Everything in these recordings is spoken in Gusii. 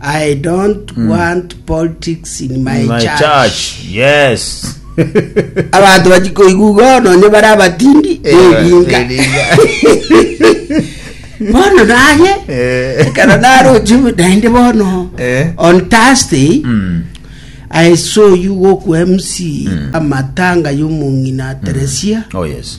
I don't want politics in my, My church. church. Yes. Abanto bachikoigwa igo nonye bare abatindi belinga. Bono naye Eh. ekero narochi naende bono Eh. on Thursday Mm. I saw you go ku MC amatanga y'omong'ina Teresia Oh yes.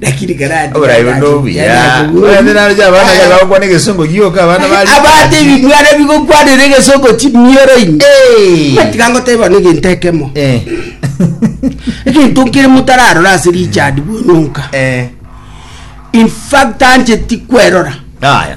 lakini karati Oborai buno obuya. Oende naro ja abana kare bagokwana egesongo gioka abana bari. abate ebibwana bigokwanera egesongo chimioro ime Eh. matiga ngoteba bono egento ekemo Eh. egento nkere motararora ase richard bwonyonka Eh. infact ancheti kwerora Aya.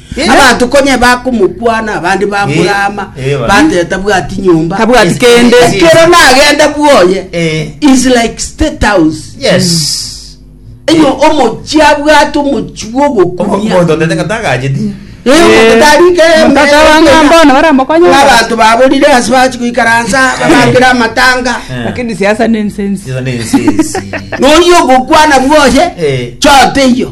Abanto konya bakomokwana, abande bamorama, bateta bwati nyomba, Tabwati kende. ekero nagenda bwoye is like state house. Enyo omochi abwate omochi bwa ogokumia. Omonto otete ng'a tagacheti. Eh, omonto tarike Omonto aba ng'a mbono baramokonye. Abanto baborire ase bachi goikaransa babakere amatanga. Lakini siasa ne ensensi. Nonya ogokwana bwoye, choteiyo.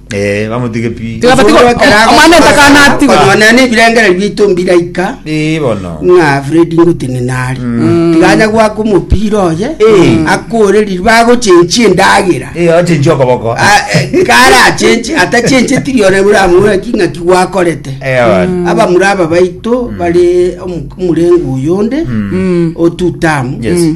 Eh, bamotige pi. Tiga bati- Osoro ekero ago- Omwana etakana atigwa. Konywa naye na ebirengererio biaito mbiraika Eh, bono. ng'a fredi ngotini nari tiganya gwaka omopira oye Eh. akoreriri bagochenchia endagera Eh, ochenchi okoboko. Ah, eh, kare achenche atachenche tiri ore buramura king'a kigwakorete Eh, bono. abamura aba baito bare omu- omurengo oyonde Mm. otutamu Yes.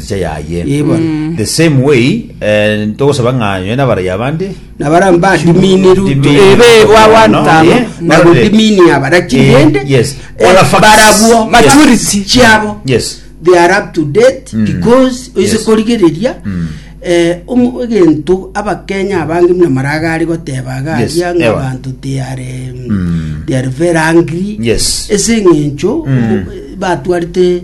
Egesacha yaye. Ee bono. The same way, eh, togosaba ng'a nonye nabaraiyo abande, na bara badiminiru Dimini- ebe wa Bono, wantano yeah. na Barore. godimini abara Eh, chindende yes. Eh, All the facts. barabwo Yes. maturity chiabo yes. they are up to date Mm. because oise Yes. korigereria Mm. eh, omu- egento abakenya abange muna maragari goteba Yes, garia ng'a ewa. abanto they are um, Mm. they are very angry Yes. ese eng'encho Mm. batwarite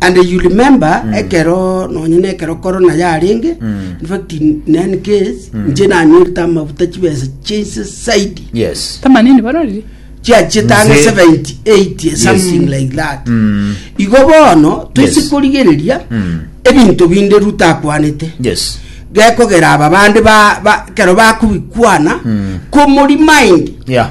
And you remember mm. ekero nonye na ekero corona yarenge mm. in fact in, in any case mm. nje nanyorete amabuta chibesa chinse saidi yes tamanini barori chiachitanga 78 something yes. like that mm. igo bono twisi yes. korigereria mm. ebinto binde rutakwanete yes gekogera aba bande ba, ba kero bakubikwana mm. komori mind yeah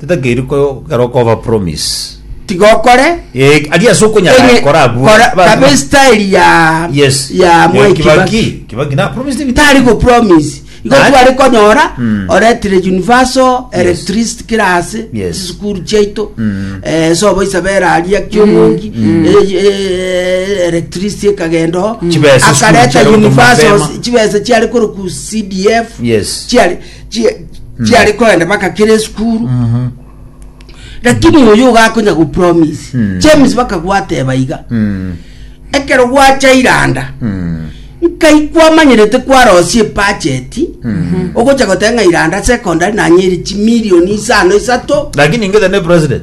Titakeiri ko kerwa koba promise. Tiga okore. Eh, ari ase okonyara Eri- kora abwo. kora- Ba- kabe ba- style ya Yes. ya Eh, Mwai Kibaki. Kibaki na promise ni tari go promise igo Naye- twari konyora Mm. oretire universal electricity kira ase Yes. chisukuru chiaito Mm. eh, sobo isabera aria kiomongi electricity ekagendo Chibesa sukuru akareta chiari gotoma universal mapema. chibesa chiari koro ku cdf Yes. chiari Chi- chiare kogenda bagakera esukuru Mhm. lakini oyo ogakonya gopromise Mm. james bakagwateba iga Mm. ekero gwacha iranda Mm. nkai kwamanyerete kwarosie epacheti Mm. ogocha goteba ng'a iranda secondary nanyeri chimilioni isano isato lakini ingete ne president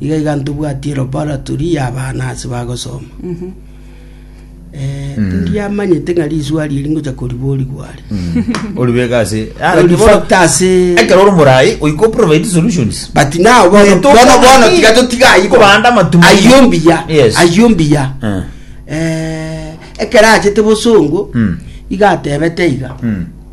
Iga iga ntobwatie laboratory y'abana ase bagosoma. Eh, ndiamanyete ng'a riswari eri ngocha koriborigwa are. Ori bweka ase. Ah, Ori bono- factor ase- Ekero ori morai, oiko provide solutions. But now bono Neto bono bono kobandi. tiga totiga ayibo. Kobanda amatumaini. Ayio mbuya. Yes. Ayio mbuya. Eh. Eh, ekero achete bosongo Mm. iga atebete iga. Mm.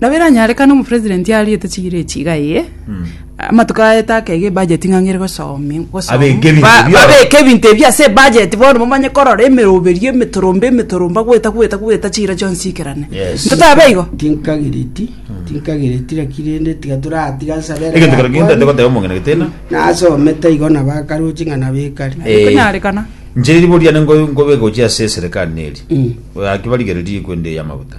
Nabo eranyarekane omopresident ariete chigiro echi iga eye, amatuko aete akega ebudget ng'a ng'ere gosomi gosom- Abeke ebinto ba- ebi oro. babeke ebinto ebi ase ebudget bono momanye korora emeroberio emetorombe emetoromba gweta gweta gweta chigiro chionsi chiikerane Yes. ntotabe igo tinkagireti tinkagireti naki rende tiga toratiga nsabere egento kero ginto ate goteba omong'ina getena nasomete igo nabakaroche ng'a nabekari Eh, konyarekana nche riboria nde ngo- ngobe gochia ase eserekari neri Mm. aki barigererie kwende eyamaguta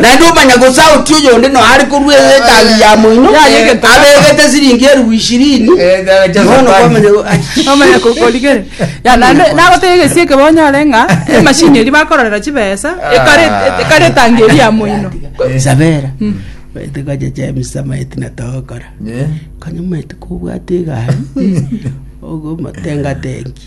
Naende omanya gose aotie oyonde noyo are korua ekambi ya moino, abegete siringi eribu ishirini, bono kwamanya go- Omanya kokorigere. Ya, naende nagoteba egesie ekebe onyore ng'a emashini eria bakororera chibesa ekare- ekare etangi eria ya moino. sabera maete kwacha James amaete na togokora konya maete kobwate egari ogomotenga tenki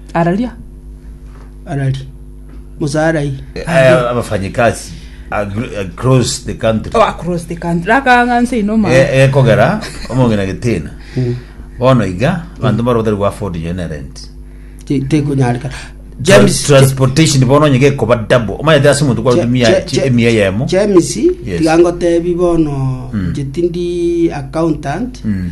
Araria. Arari. Musarai. Aya abafanyikazi agr- across the country Oh, across the country. Rakanga nse ino ma. E- ekogera omongina getena bono iga abanto mbaro batari gwafodi nyo ne rent Ti- Tikunyarika. James. transportation bono onye gekoba double omanyete ase omonto kwa Je- mia je- je- emia yemo James Yes. tiga ngotebi bono jetindi accountant Mm.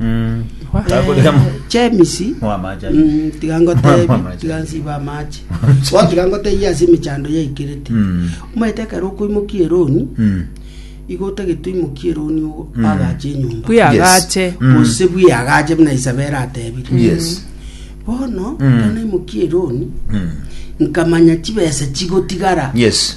Mm. Takoria mo- James Moa amache aye. mm, tiga Moa ngotebi amache tiga aye. nsiba amache Wa tiga ngotebi ase emechando yaikirete Mm. omaete ekero okoimokia eroni Mm. igo otagete oimokie eroni ogo agache enyomba buyagache Mm. gose bwi agache buna isabera atebire Yes. bono Mm. ekero naimokia eroni Mm. nkamanya chibesa chigotigara Yes.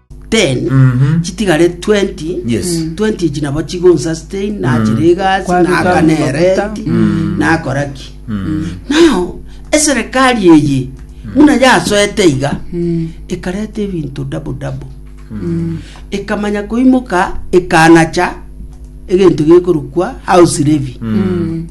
10 Mhm. chitigare 20 Yes. 20 echi nabo chigonsustain nachira egasi Kwabeka naaka ne amaguta. renti Mm. nakora ki Mm. nao eserekari eye muna yasoete iga Mm. ekareta ebinto dabo dabo ekamanya koimoka ekanacha egento gekorokwa house levy Mm.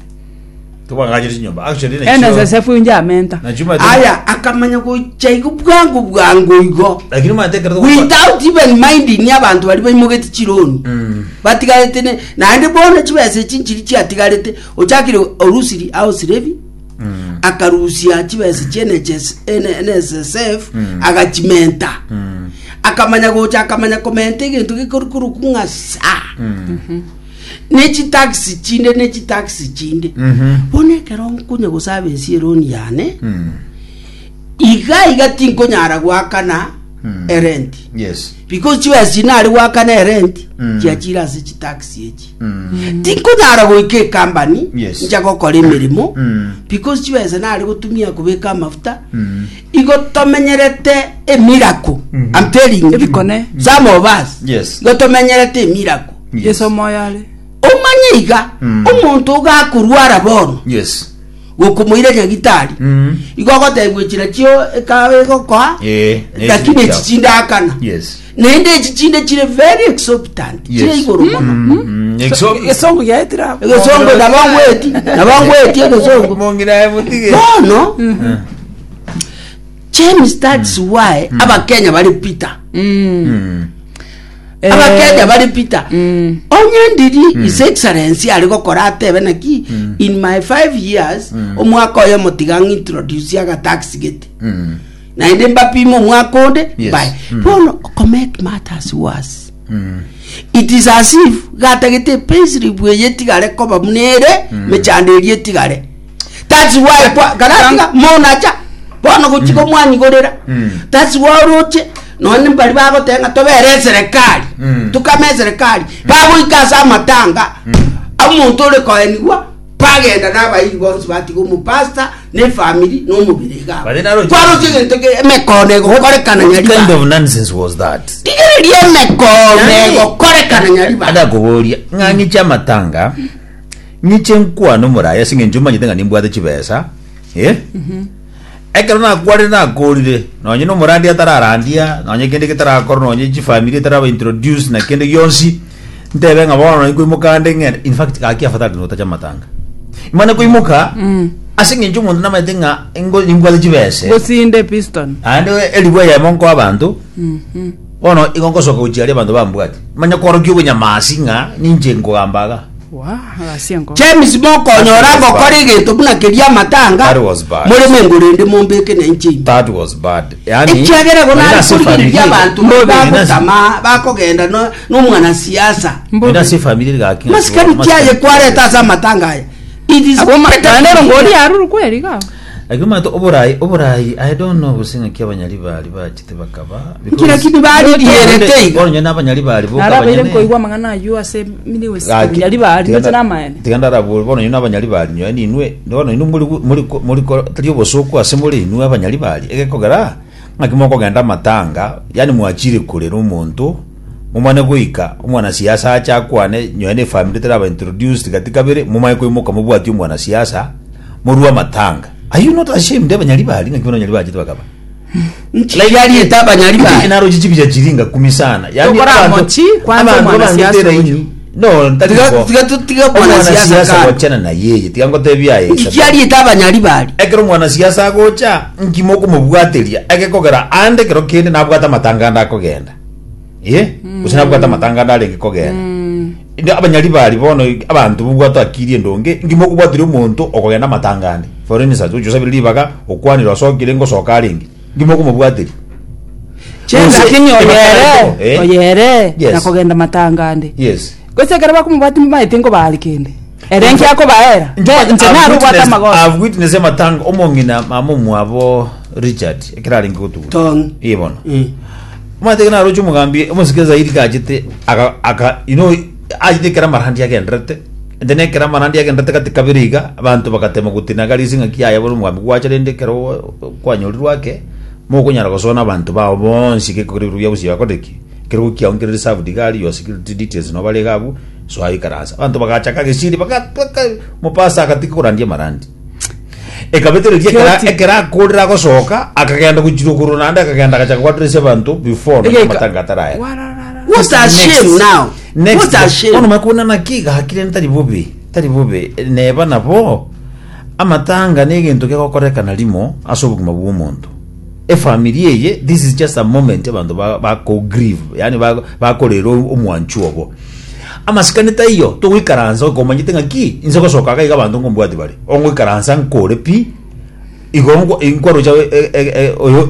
Tobang'anyire chinyomba. Actually, na Ene chioo- sesefu inje amenta. na chuma tu- aya akamanya gocha igo bwango bwango igo Lakini matekero tokwa- without even minding abantu bari baimogeti chironi Mm. batigarete ne- naende bono chibesa echi nchiri chiatigarete ochakire orusiri ao sirevi Mm. akarusia chibesa chie NHS N- NSSF Mm. agachimenta Mm. akamanya gocha akamanya komenta egento gekorikoroku ng'asa Mm. ne chitaxi chinde ne chitaxi chinde Mhm. bono ekero nkonya gosaba ensi eroni yane Mm. iga iga tinkonyara gwakana Mm. erenti Yes. because chibesa chinare gwakana erenti Mm. chiachire ase chitaxi echi Mm. tinkonyara goika ekambani Yes. ncha gokora emeremo Mm. because chibesa nare gotumia kobeka amafuta Mm. igo tomenyerete emirako I'm telling you. Ebikone. some of us Yes. igo tomenyerete emirako Yes. Yeso omoyo are. Omanye iga, Mm. omonto ogakorwara bono, Yes. gokomoira nyagitari, Mm. igo ogotebiwa echira chio ekawa egokoa, Eh, ne lakini chiri echi chao. chindakana. Yes. Naende echi chinde chire very exorbitant, Yes. chire igoro mono. Mm, mm, exo- Esongo ya etira. Egesongo nabangweti, nabangweti egesongo. Mongira ebutige. Bono, Eh, James, that's why abakenya bari Peter. mm. Eh. abakenya bare peter Mm. onye ndiri his excellency ari gokora atebe naki in my five years omwaka oyo motiga ng'introduce agataxi gete Mm. naende mbapime omwaka onde Yes. mbae Mm. bono to make matters worse Mm. it is as if gatagete payslip eye etigare koba buna ere mechando eri etigare That's why kwa karatinga monacha bono gochi komwanyigorera. That's why oroche nonye mbari bagoteba ng'a tobere eserekari. Tukame eserekari. Bagoika ase amatanga. Omonto ore koenigwa bagenda nabairi bonsi batiga omopastor na efamiri na omobere iga abwo. Bare naroche- Kwaroche egento ke emekono egokorekana What nyari kind bande. of nonsense was that? Rigereria emekono egokorekana nyari bande. Adakoboria ng'ang'i chiamatanga Ninche nkwane omoraia ase engencho manyete ng'a nimbwate chibesa, eh? Ekero nakwanire nakorire, nonye nomorandia atararandia, nonye kende getarakorwa, nonye chifamiri etaraba introduce na kende gionsi, ntebe ng'a bono nai koimoka nde ng'ende. In fact, gaki afadhali notacha matanga. Mane koimoka, ase engencho omonto namanyete ng'a ingo nimbwate chibese, gosinde episton aende eribu eyemo nkoa abanto bono igo ngosoka gochia aria abanto bambwati manya kworokia obonyamasi ng'a ninche nkogamba iga James mokonyora agokora egento buna keria amatanga That was bad. more mengo rende mombeke na inche imbe That was bad. Yaani, ekiagera bono haina ari si korigereria familia. abanto Mbobe, haina si- bagotama bakogenda no- nomwana siasa haina si familia gaki. masikani kiaye kwareta ase amatanga aya It is Abwo better makanero to- ngori aruru kweri ga. Agio manto oborai oborai aye dono oboseng'aki abanyari bari bachete bakaba Nkira kibi baridierete iga. Onye nabanyari bari boka Narabeire abanyene. nkoigwa amang'ana ayio ase emeri yose. Gaki- Abanyari bari tiga nche na- namaene. tiga ndarabore bono inwe abanyari bari nyoe ninwe bono inwe muri muri muri tari obosuku ase more inwe abanyari bari egekogera ng'aki mokogenda amatanga yani mwachire korera omonto Momanye goika omwanasiasa ache akwane, nyoe ne efamiri etaraba introduced gati kabere, momanye koimoka mobwatie omwanasiasa, morue amatanga. Are you not ashamed abanyaribari ng'aki bono abanyaribari bachete bakaba? Like ariete abanyaribari. Inche naroche chibicha chiria ngakumi sana. Yaani Tokora abanto- mochi, kwanza abanto omwanasiasa abangete oyo. raini. No, ntari Tiga- bo. tiga tu- tiga mwanasiasa Omwanasiasa kando. gochana na yeye, tiga ngotebie aye. Ng'iki ariete abanyaribari. ekero omwanasiasa agocha ngima okomobwateria agekogera ande ekero kende nabwate amatanga ande akogenda Eh, gose nabwate amatanganda arenge kogenda Inde abanyari bari bono abanto bobwato akiri endonge ngima okobwatire omonto okogenda amatangande for instance ochi osabire ribaga okwanire osokire ngosoka arenge ngima okomobwatiri Chen Gose lakini ebakara oyere, to, eh? oyere Yes. na kogenda matangande. yes Gose ekero bakomoboa timbamaete nkobaare kende. Ere enki akobaera, Inche inche nare obwate I amagoro. have witnessed amatanga omong'ina mama omwabo Richard ekero arenge gotugwa. Tong. Ee bono. Eh. Omanyete ekero naroche omogambi omosike zaidi gachete aga aga you know achete ekero amarandi agendererete and then ekero amarandi agendererete gati kabere iga abanto bagatema gotinaga rese ng'aki yaya bono omogambi gwacha rende ekero oo- oo- kwanyorirwe ake mokonyara gosoa na abanto bao bonsi gekogera ebikorwa biabo gose yakorire ki. Kerogo kiao nkere reserved iga ari your security details no barega abwo soa ikaransa abanto bagachaka gesiri bagatweka mopasa agatika korandia marandi ekabetereria ekera Kioti. ekera akorera agosoka akagenda gochirwa korwa naende akagenda agachaka kwaturisia abanto before Egeka. amatanga ataraya Wararara. What a shame now. What a shame. bono makona naki gakire ntari bobe tari bobe neba nabo amatanga na egento gegokorekana rimo ase obogima bw'omonto Efamiri eye this is just a moment abanto bako grieve yaani bakorera omwanchwa obo amasikani taiyo togoikaransa okomanyete ng'a ki inse gosoka iga abanto nkombwati bare ongoikaransa nkore pi igo nkwarocha oyo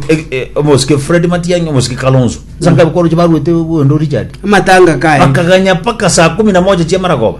omosike Fred Matiang'i omosike Kalonzo nsa nkabe kwarocha baruete Wendo Richard amatanga kaye bakaganya mpaka saa kumi na moja chiamaragoba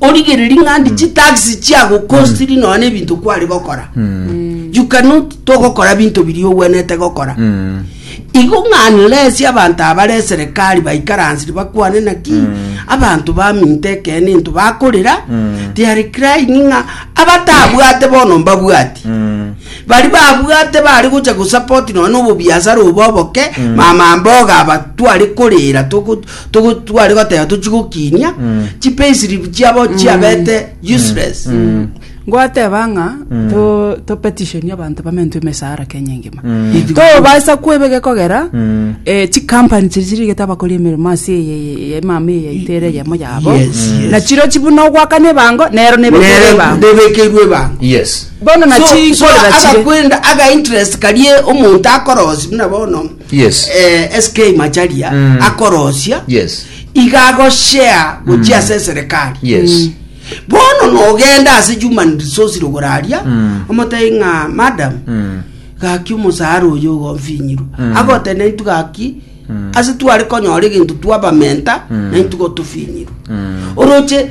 origereri ng'andi hmm. chitaxi chiagokostiri hmm. nonya na ebinto kwari gokora hmm. you cannot togokora binto biri ogwenete gokora igo ng'anlesi abanto abare eserekari baikaransiri bakwane naki abanto baminto ekene into bakorera tiari crying ng'a abatabwate bono mbabwati bari babwate bari gocha gosapoti nonya na obobiasara obo oboke mama mboga abatware korera Togo tware goteba tochi gokinia chipayslip chiabo chiabete useless. Mm. Ngoateba ng'a to to petition abanto bamentwe emesara Kenya engima. Tobasa kwebege kogera eh chi company chiri chiri geta bakori emeremo ase eye eye eye mama eye itere yemo yabo. Yes, yes. Na chiro chibu no gwakane bango nero nebe Nere bango. ndebekeirwe bango Yes. Bono na So- chi so nkorera chire. agakwenda aga interest karie omonto akorosi buna bono Yes. eh, SK Macharia Mm. akorosia Yes. iga agoshare gochia ase eserekari Yes. bono nogenda ase human resource rogoraria Mm. omotari ng'a madam Mm. gaki omosaara oyo ogomfinyirwa Mm. agote naintu gaki Mm. ase tware konyora egento twabamenta Mm. naintu gotofinyirwa Mm. oroche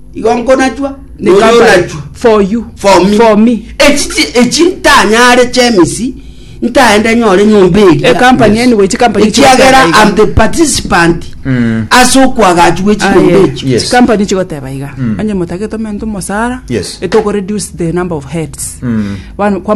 Igo nkonachwa, ne Oyo company onachwa. for you For me. for me Echi chi- echi ntanyare chemisi ntaende nyore nyomba eria E company Yes. anyway chikampani ekiagera chigoteba am iga. the participant Mm. ase okwagachwa echinyomba Aye, echi Yes. chikampani chigoteba iga onye motagete omonto omosara Yes. etokoreduce the number of heads Mm. Bano- kwamanya